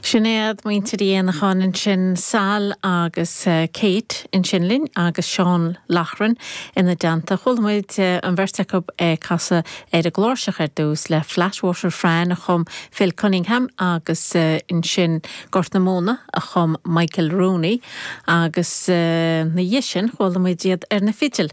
Sin iad muintir Uí Éanacháin ansin, Sal agus Kate ansin linn agus Seán Loughran ina dteannta. Chuala muid an bheirt acu ag casadh ar an gcláirseach ar dtús le Flatwater Fran a chum Phil Cunningham agus ansin Gort na Móna a chum Michael Rooney agus ina dhiaidh sin chuala muid iad ar na fidil.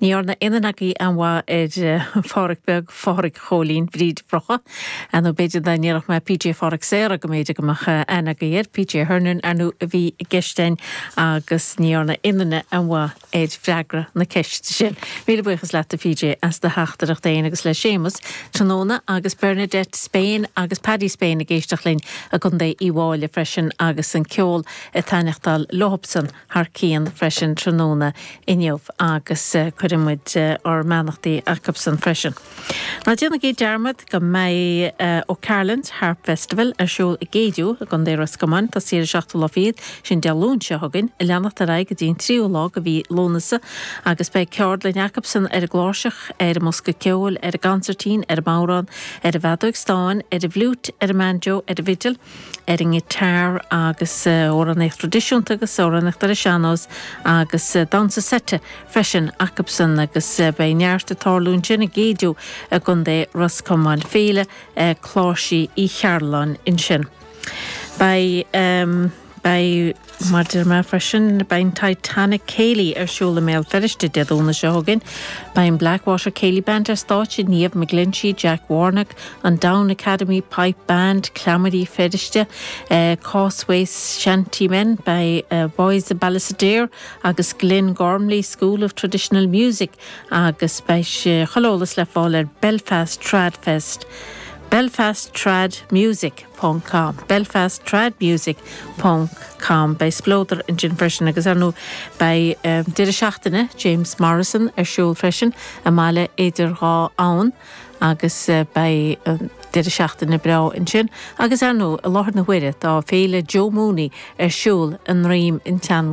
Ní dhearna aon duine agaibh aon mhaith ar Pháraic Beag, Pháraic Chóilín Bhríd Bhrocha, nó b'fhéidir dá ndéarfadh mé PJ Pháraic Saora go mb'fhéidir go mbeadh aithne agaibh air, PJ Hernon ar ndú a bhí i gceist a'inn agus ní dhearna aon duine aon mhaith ar fhreagra na ceiste sin. Míle buíochas leat a PJ as do theachtaireacht fhéin agus le Séamus tráthnóna agus Bernadette Spain agus Paddy Spain ag éisteacht linn i gContae Uíbh Fhailí freisin agus an ceol ag taitneachtáil leothbsan. thar cionn freisin tráthnóna inniu agus cuirfidh muid ár mbeannachtaí acusan freisin. Ná déanaigí dearmad go mbeidh O'Carolan's Harp Festival ar siúl i gCéideadh i gContae Ros Comáin, ag tosaí ar an seachtú lá fichead, sin Dé Luain seo chugainn, a leanacht ar aghaidh go dtí an tríú lá de mhí Lúnasa agus beidh ceardlainn acusan ar an gcláirseach, ar an mbosca ceoil, ar an gcansairtín, ar an mbodhrán, ar an bhfeadóig stáin, ar an bhfliúit, ar an mbanjo, ar an bhfidil. ar an ngiotár agus amhránaíocht thraidisiúnta agus amhránaíocht ar an sean-nós agus damhsa seite freisin acusan agus beidh neart ag tarlú ansin i gCéideadh i gContae Ros Comáin, Féile Cláirsí Uí Chearbhalláin ansin. Beidh. Mar a deir mé freisin, beidh Titanic Céilí ar siúl i mBéal Feirste Dé Domhnaigh seo chugainn. Beidh an Blackwater Céilí Band ar stáitse, Niamh McGlinchey, Jack Warnock, an Down Academy Pipe Band, Cleamairí Feirste, Causeway Shantymen, beidh Boys of Ballysadare agus Glengormley School of Traditional Music agus beidh chuile eolas le fáil ar Belfast Trad Fest, Belfast Trad Music. com. Belfast Trad Music ponc com. Beidh spleodar ansin freisin agus, ar ndóigh, beidh deireadh seachtaine James Morrison ar siúl freisin i mBaile Idir Dhá Abhainn agus beidh deireadh seachtaine breá ansin agus, ar ndóigh, i láthair na huaire tá Féile Joe Mooney ar siúl i nDroim an tSeanbhó.